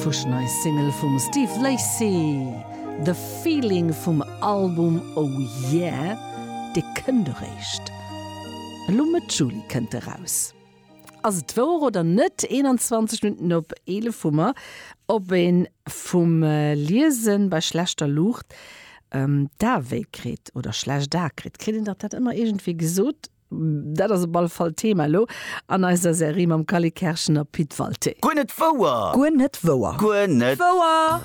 Fuschnei Single vum Steve Lacy, The Feeling vum Album Oh Yeah, dee kënnt eréischt elo Mëtt Juli kënnt e raus. Ass et wouer oder net? 21 Minutten op 11 hu mer. Ob een vum Liesen bei schlechter Luucht d'Ae wéi kritt oder schlecht Ae kritt, kritt een dach dat ëmmer iergendwéi gesot. Dat ass op alle Fall Thema elo an eiser Serie mam Cally Kerschen a Pit Walté. Guer net wouer! Guer net wouer! Guer net wouer!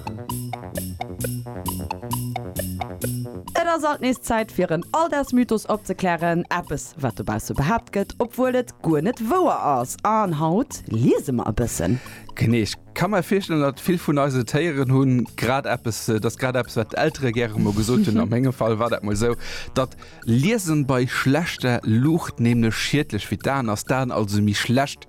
Et ass alt nees Zäit fir en Alldagsmythos opzeklären, eppes wat dobausse behaapt gëtt, obwuel et guer net wouer ass. An haut liese mer e bëssen. Knecht Kann mer virstellen dat vill vun eise Téieren hunn grad eppes, et ass grad eppes wat d'Eltere gäre mol gesot hunn, a mengem Fall war dat mol esou, datt Liesen bei schlechter Luucht nämlech schiedlech fir d'Aen ass, d'Aen also méi schlecht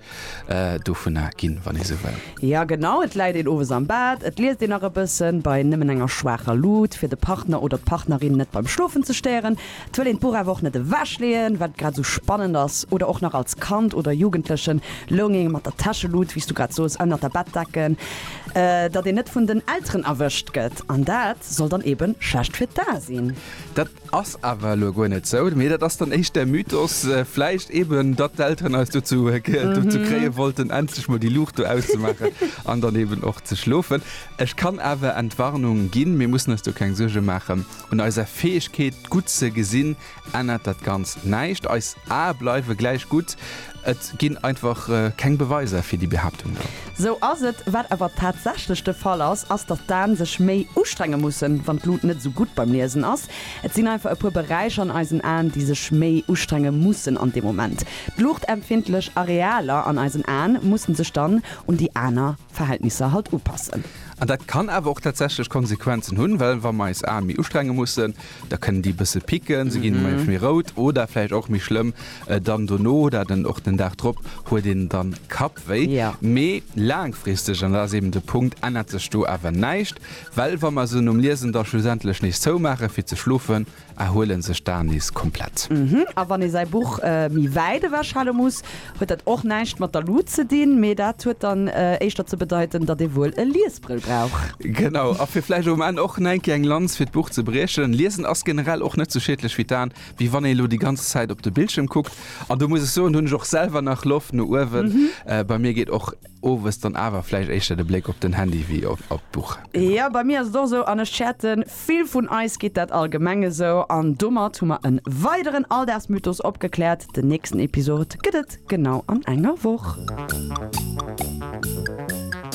dovunner ginn, wann ee sou wëll. Jo genau, et läit een owes am Bett, et liest een nach e bëssen bei nëmmen enger schwaacher Luut, fir de Partner oder d'Partnerin net beim Schlofen ze stéieren. Et wëll een d'Buch awer och net ewech leeën, wat et grad esou spannend ass. Oder och nach als Kand oder Jugendlechen loung een mat der Täschelut, wéi s du grad soos, ënnert der Bettdecken, datt een net vun den Elteren erwëscht gëtt. An dat soll dann eebe schlecht fir d'A sinn. Dat ass awer elo guer net sou, mee dat ass dann éischt där Mythos vläicht eeben, datt d'Elteren eis dozou kréie wollten, endlech mol déi Luucht do auszemaachen an dann eeben och ze schlofen. Ech kann awer Entwarnung ginn, mir mussen eis do keng Suerge maachen. Un eiser Fäegkeet gutt ze gesinn ännert dat Ganzt näischt. Eis Ae bleiwe gläich gutt. Et ginn einfach keng Beweiser fir déi Behaaptung do. Sou ass et. Wat awer tatsächlech de Fall ass, ass datt d'Aen sech méi ustrenge mussen, wann d'Lut net esou gutt beim Liesen ass. Et sinn einfach e puer Beräicher an eisen Aen, déi sech méi ustrenge mussen an deem Moment. D'luuchtempfindlech Arealer an eisen Aen musse sech dann un déi aner. Verhältnisser halt upassen. An dat kann awer och tatsächlech Konsequenzen hunn, well wa mer eis Aen méi ustrenge mussen, da kënnen déi e bësse picken, se ginn manchmal méi rout oder vläicht och méi schlëmm dann dono oder den och den Dag drop huet een dann Kappwéi. Mee laangfristeg, an dat ass eben de Punkt, ännert sech do awer näischt, well wa mer se nom Liesen da schlussendlech nees zoumaachen fir ze schlofen, erhuelen sech d'Aen nees komplett. A wann ee säi Buch méi wäit ewechhale muss, huet dat och näischt mat der Lut ze dinn, mee dat huet dann éischter ze bedeiten, datt ee wuel e Liesbrëll brauch. Genau, a fir vläicht um Enn och nengkéier eng Lanz fir d'Buch ze briechen, Liesen ass generell och net sou schiedlech fir d'Aen, wéi wann ee lo déi ganz Zäit op de Bildschierm kuckt. An do muss ech soen, hunn ech och selwer nach Loft no uewen. Bei mir geet och. Owes dann awer vläicht éischter de Bléck op den Handy wéi op d'Buch, genau. Jo, bei mir ass et och esou, an ech schäerten, vill vun eis geet dat allgemeng esou. An domat hu mer e weideren Alldagsmythos opgekläert. Den nächsten Episod gëtt et genau an enger Woch.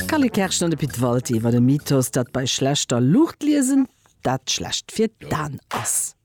D'Carly Kerschen an de Pit Walti iwwer e Mythos, datt bei schlechter Luucht liesen dat schlecht fir d'An ass.